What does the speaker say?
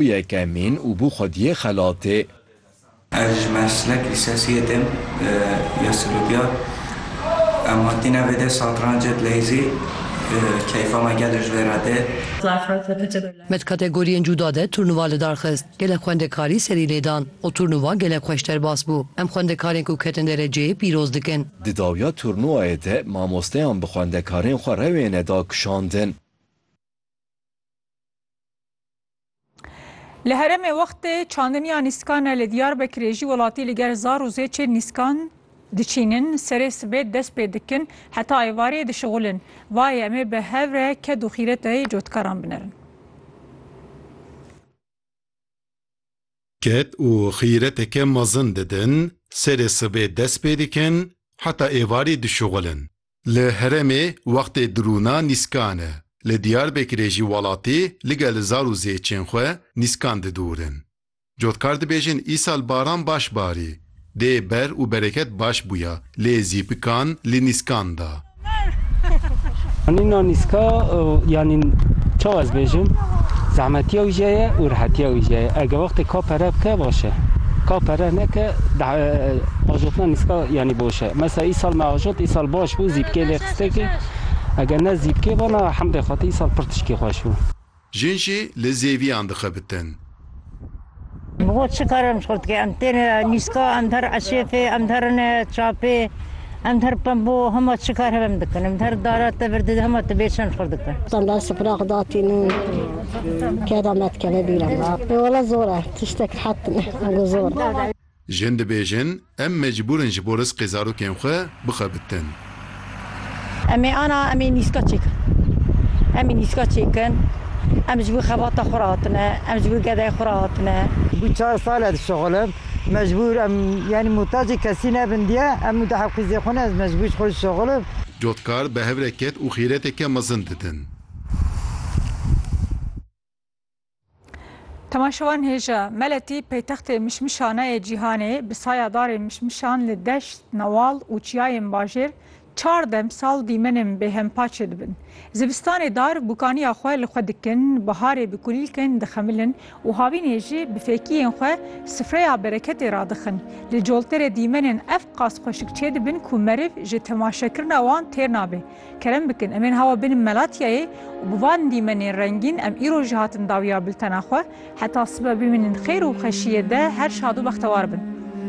Bû yekemîn û bû xwediyê xelatê. Ez ji Mersinê Kilisesiyê tim ya Silûdiya. Em hatîne vê dê satrancê dileyzî. Keyfa me gelê ji vê re tê. Me di kategoriyên cuda de turnuva li dar xist. Gelek xwendekarî serî lê dan û turnuva gelek xweş derbas bû. Em xwendekarên ku ketin dereceyê pîroz dikin. Di dawiya turnuvayê de mamosteyan bi xwendekarên xwe rewêne dakişandin. Li herêmê wextê çandiniya nîskan e li Diyarbekirê jî welatî li ger zar û zêçê nîskan diçînin, serê sibê dest pê dikin heta êvarê dişixulin. Vayê em ê bi hev re ked û xîretayê cotkaran binerin. Ked û xîreteke mezin didin, serê sibê dest pê dikin heta êvarê dişixulin. Li herêmê wextê dirûna nîskan e. Li Diyarbekirê jî welatî ligel zar û zêçên xwe nîskan didorin. Cotkar dibêjin îsal baran baş barî. Dê ber û bereket baş bûya lê zîpikan li nîskan da. Anîna nîska yanî çawa ez bêjim zehmetiya wî jê ye û rehetiya wî jê ye. Eger wextê ka pere bike baş e. Ka pere neke ajotna nîska yanî boş e. Mesela îsal me ajot îsal baş bû zîpkê lê qistekê eger ne zîpkê ba na hemdê xwetî îsal pir tişkî xweş bû. Jin jî li zêviyan dixebitin. Bi xwe çi kar em ji xwe dike? Em tên nîska, em her eşêfê, em her rine çapê, em her pembo hema çi kar hebe em dikin. Em her dara tevir dide hema tu bê çend xwe dikin. Em ber sifira xwe datînin keda me dikeve bîr em. Ê wele zor e tiştek rehet bine. Ango zor e. Jin dibêjin, Em mecbûr in ji bo rizqê zarokên xwe bixebitin. Em ê ana em ê nîska çêkin. Em ê nîska çêkin. Em ji bo xebata xwe re hatine. Em ji bo gedeyê xwe re hatine. Bû çar sal ez dişixulim. Mecbûr em yanî muhtacê kesî nebin diye em û dehê qîzê xwe ne ez mecbûr ji xwe dişixulim. Cotkar bi hev re ket û xîreteke mezin didin. Temaşewan hêja Meletî paytextê mişmişaneyê cîhanê bi saya darê mişmişan li deşt, newal û çiyayên bajêr çar demsal dîmenên bêhempaçê dibin. Zivistanê dar bûkaniya xwe li xwe dikin, biharê bi kulîlkên dixemilin û havînê jî bi fêkiyên xwe sifreya bereketê radixin. Li colterê dîmenên ev qas xweşik çêdibin ku meriv ji temaşekirina wan têr nabe. Kerem bikin em ên hawa bin Melatiyayê û bi van dîmenên rengîn em îro jî hatin dawiya biltena xwe. Heta sibe bimînin xêr û xweşiyê de her şad û bextewar bin.